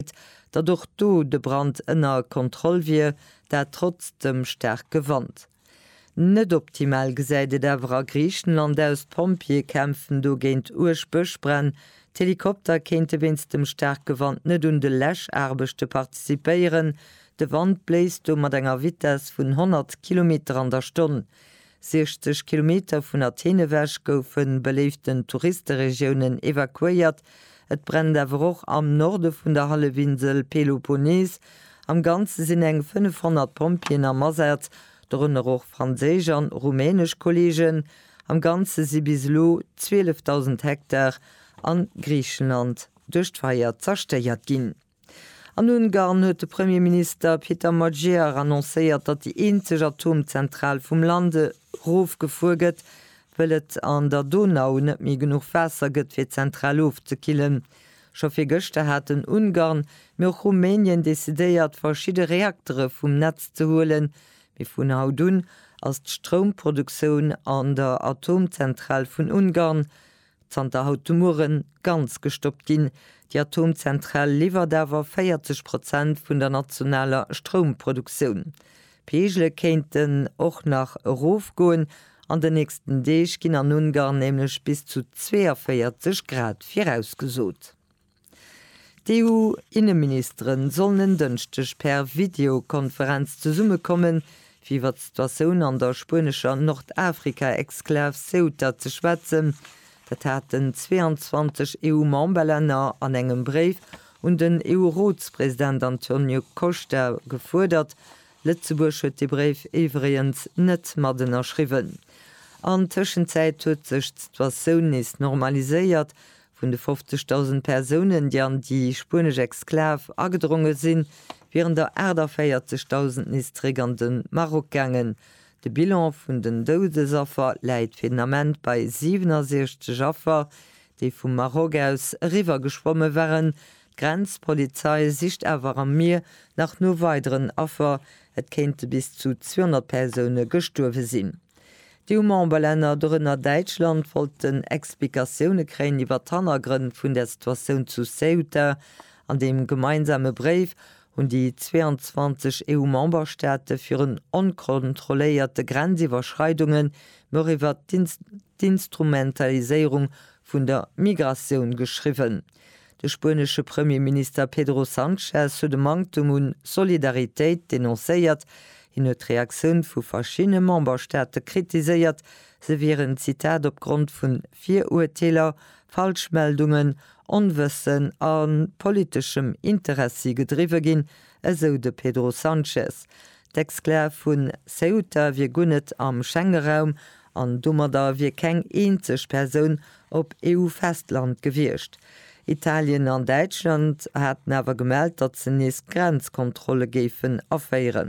Sécherheet, datt och do de Brand ënner Kontroll wier, dat trotz dem staarke Wand. Net optimal gesäit et awer a Griichenland aus, d'Pompjeeë kämpfen do géint uerg Bëschbränn. D'Helikopter kéinte wéinst dem staarke Wand net un de Läschaarbechte participéieren. De Wand bléist do mat enger Vitess vun 100 Kilometer an der Stonn. 60 Kilometer vun Athen ewech goufen beléiften Touristeregiounen evakuéiert. Et brennt awer och am Norde vun der Hallefinsel Peloponnes. Am Ganze sinn eng 500 Pompjeeën am Asaz, dorënner och franséisch an rumänesch Kolleegen. Am Ganze si bis elo 12.000 Hektar a Griichenland duerch d'Feier zerstéiert ginn. An Ungarn huet de Premierminister Peter Magyar annoncéiert, datt déi eenzeg Atomzentral vum Land erofgefuer gëtt, wëll et an der Donau net méi genuch Waasser gëtt fir d'Zentral ofzekillen. Scho virgëschter haten Ungarn, mee och Rumänien decidéiert, verschidde Reaktere vum Netz ze huelen, mee vun haut un ass d'Stroumproduktioun an der Atomzentral vun Ungarn zanter haut de Mueren ganz gestoppt ginn. Déi Atomzentral liwwert awer 40 Prozent vun der nationaler Stroumproduktioun. D'Peegele kéinten och nach erofgoen. An den nächsten Deeg ginn an Ungarn nämlech bis zu 42 Grad virausgesot. D'EU-Inneministeren sollen en Dënschdeg per Videokonferenz zesummekommen, fir iwwer d'Situatioun an der spuenescher Nordafrika-Exklav Ceuta ze schwätzen. Dat haten 22 EU-Memberlänner an engem Bréif un den EU-Rotspresident Antonio Costa gefuerdert. Lëtzebuerg huet dee Bréif iwwregens net mat ënnerschriwwen. An Tëschenzäit huet sech d'Situatioun nees normaliséiert, Vun de 50.000 Persounen, déi an déi spuenesch Exklav agedronge sinn, wieren der 48.000 nees zeréck an de Maroc gaangen. De Bilan vun den Doudesaffer läit fir den Ament bei 67 Affer, déi vum Maroc aus eriwwer geschwomme waren. D'Grenzpolizei sicht awer am Mier nach no weideren Affer. Et kéinte bis zu 200 Persoune gestuerwe sinn. D'EU-Memberlänner, dorënner Däitschland, wollten Explikatioune kréien iwwer d'Hannergrënn vun der Situatioun zu Ceuta. An deem gemeinsame Bréif hunn déi 22 EU-Memberstaate virun onkontrolléierte Grenziwwerschreidunge, mee och iwwer d'Instrumentaliséierung vun der Migratioun geschriwwen. De spuenesche Premierminister Pedro Sanchez huet e Manktem un Solidaritéit denoncéiert. Hien huet d'Reaktioun vu verschiddene Memberstaate kritiséiert, se wieren, Zitat, op Grond vun Viruerteeler, Falschmeldungen, Onwëssen a politeschem Interessi gedriwwe ginn, esou de Pedro Sanchez. D'Exclave vu Ceuta wier guer net am Schengeraum an domadder wier keng eenzeg Persoun op EU-Festland gewiescht. Italien an Däitschland haten awer gemellt, datt se nees Grenzkontrolle géifen aféieren.